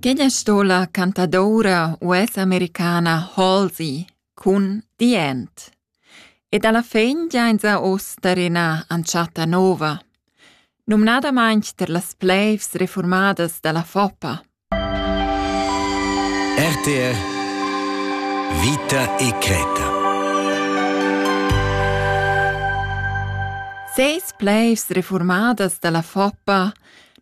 Quella sto la cantadoura US-americana Halsey cun The End. E dalla fin giainsa uss tar ina entschatta nova, numnadamaing tar las pleivs reformadas da la Foppa. RTR Vita e Creta Seis pleivs reformadas da la Foppa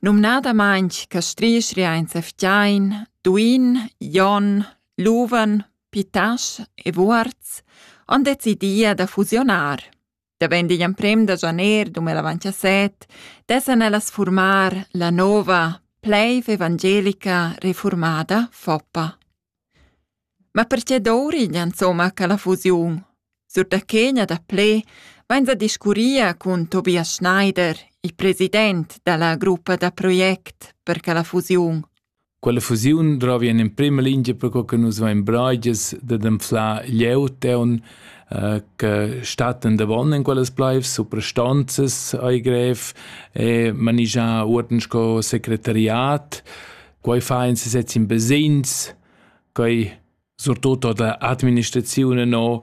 Numnadamaing castrisch riainsa fgiain, duin, jon, luven, pitasch e vuorz han decidì da fusionar. Davent digl emprem da janer 2017 dessan ellas furmar la nova pleiv evangelica reformada Foppa. Ma perche dovriglia insomma quella fusiun? Sur da che gna daplè vains a discurrir cun Tobias Schneider, il president da la gruppa da project per quella fusiun. Quella fusiun drovi in emprema lingia per co che nus vain braigias dad anflar glieud eun eh, che stattan davon in quellas plaivs suprastanzas ai grev e manigiar uorden sco secretariat quei fa in sesez in basegns, quei surtut da administraziun no,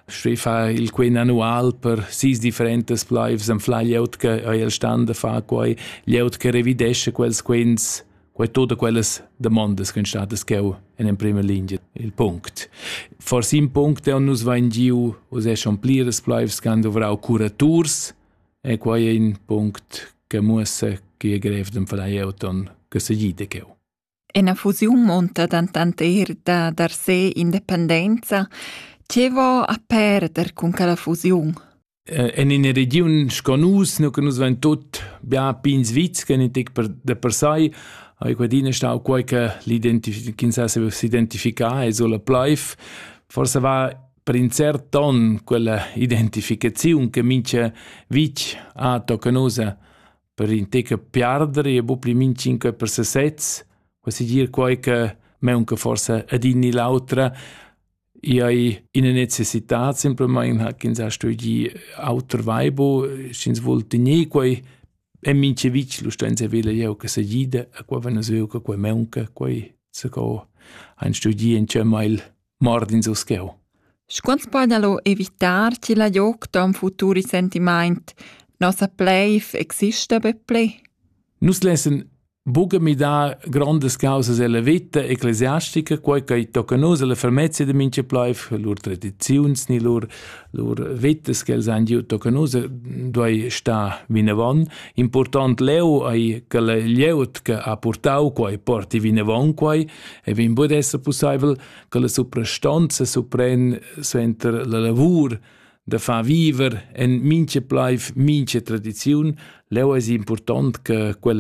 sche fa il quen annual per sis differentas pleivs en fla glieud che ei el stand da fa quei, glieud che revidesce quels quens, quei tutte quellas demandas che statas cheu en in prima linea il punct. Forse in punct è nus vain giu, us è schon pliras pleivs che han dovrau curaturs, E quai è in punct che muossa chi è grev d'ün far eir ton che segì de cheu. Ena fusiun munta dentant eir da dar se independenza. Che vo a perder cun quella fusiun? En ina regiun sco nus, nu che nus vain tut bia pins vits, che tic per de per sai, ha quadina stau quai che l'identifica, s'identifica e sola plaiv. Forse va per in cert ton quella identificaziun che mincha vitg ha tocca nusa per in teca piardere e bu pli min cinque per se sez, quasi dir quai che meunca forse adin ni l'autra, i hai ina necessità simpelmaing ha ch'ins ha studi auter vaibo, sch'ins vul tener quai e minche vitg lu stenza vela jeu che se gida a quai vena sveu che quai meunca, quai se co han studi in cemma il mord ins uscheu. Scuant podalo evitar chi la joc ton futur sentimaint, nossa pleif exista be ple? Nus lessen buca midar grondas causas ella vita ecclesiastica, quei che tocca nus alla fermezza de mincha pleif, lur tradiziuns ni lur lur vitas che els han giu tocca nus duei sta vinavon. Important leu ei che la glieud che ha purtau quei porti vinavon quei e vegn bod esser pussaivel che la suprastanza supren suenter la lavur da far viver en mincha plaiv mincha tradiziun, leu es important che quella